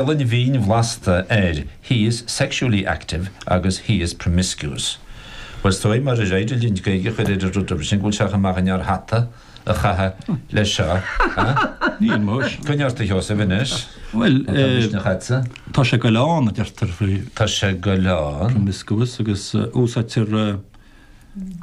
Gaelainn mhín bhlasta air, he is sexually active agus he is promiscuous. Bhuel, is dóigh, murar féidir linn Gaeilge a chur ar an rud sin, go bhfuil sé chomh maith againn ár hata a chaitheamh leis seo, eh? Níl, muis. Coinnigh ort, a Sheosaimh, anois. Bhuel, eh. Tá misneach a'dsa. Tá sé ag goil ann, a deirtear faoi. Tá sé ag goil ann. Promiscuous agus úsáidtear.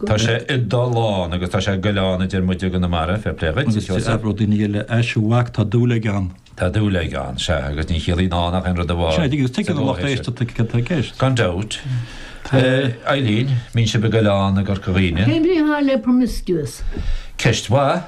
Tá sé ag dul ann agus tá sé ag goil ann a deir muide i gConamara, fair play dhuit, a Sheosaimh. Agus déarfadh daoine eile, A mhac, tá dúil aige ann. Tá dúil aige ann, sea, agus ní chiallaíonn ann ach aon rud amháin. Sin é, agus tuigeann an lucht éisteachta cad tá i gceist. Gan dabht. Eileen, an mbíonn sibh ag goil ann i gCorca Dhuibhne. Cén bhrí atá le promiscuous? Ceist mhaith.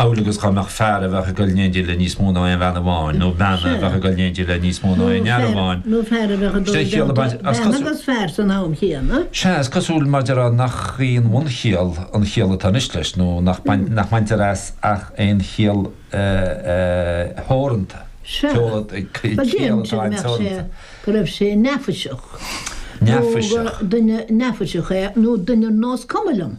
amhlaidh agus dá mbeadh fear a bheadh ag dul in éindí le níos mó ná aon bhean amháin, nó bean a bheadh ag dul in éindí le níos mó ná aon fhear amháin, nó fear a bheadh ag dul i dteannta bean agus fear san am chéanna. Sea, is cosúil, maidir, nach í an bhunchiall an chiall atá anois leis, nó nach mbaintear as ach aon chiall theoranta. Sea, dá ndéarfá an té a bheadh sé go raibh sé neafaiseach, nó gur duine neafaiseach é, nó duine ar nós cuma liom.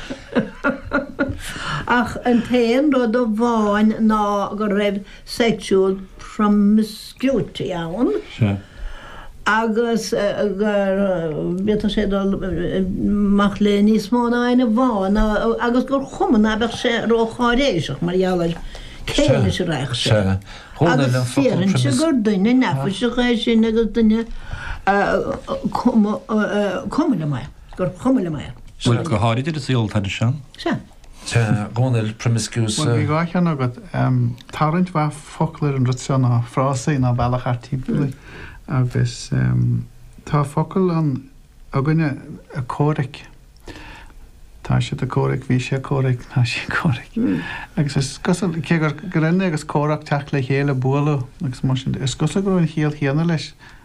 Ach an t-aon rud amháin ná go raibh sexual promiscuity ann agus go bhféadfadh sé dul amach le níos mó ná éinne amháin agus gur chuma ná beadh sé ró-cháiréiseach mar gheall air cé leis a raibh sé. Agus déarfainnse gur duine neafaiseach é sin agus duine cuma liom é. gur chuma liom é. Bhuel, go háirid ar an saol atá anois ann. Sea. Sea, Dhomhnaill, promiscuous. Bhuel, bhí dhá cheann agat. Tá roinnt mhaith focal ar an rud seo, nó frásaí, nó bealach thart timpeall air. Agus tá focal ann againne, comhrac. Tá siad ag comhrac, bhí sé ag comhrac, tá sí ag comhrac. Agus is cosúil, cé gur coinne agus comhrac, teacht le chéile, bualadh agus mar sin de, is cosúil go raibh an chiall chéanna leis.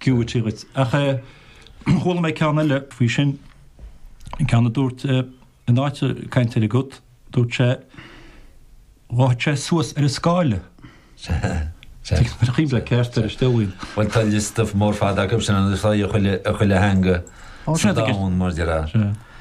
cúitigh dhuit. Ach eh, chuala mé ceann eile faoi sin, ceann a dúirt eh, in áit eh, caint ar an gcat, dúirt sé, dhóigh sé suas ar an scáile. Tá cuid mhaith ceart air, is dóigh. Bhuel, tá liosta mór fada acu sin, agus sa chuile theanga sa domhan, mar de raibh.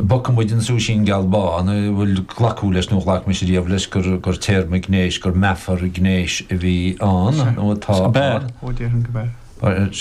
bogfaidh muid an súisín geal bán, a bhfuil glacadh leis nó ghlac mise riamh leis gur téarma gnéis, gur meafar gnéis a bhí ann nó atá ann. Sea, go b'ea, ó déarfainn go b'ea.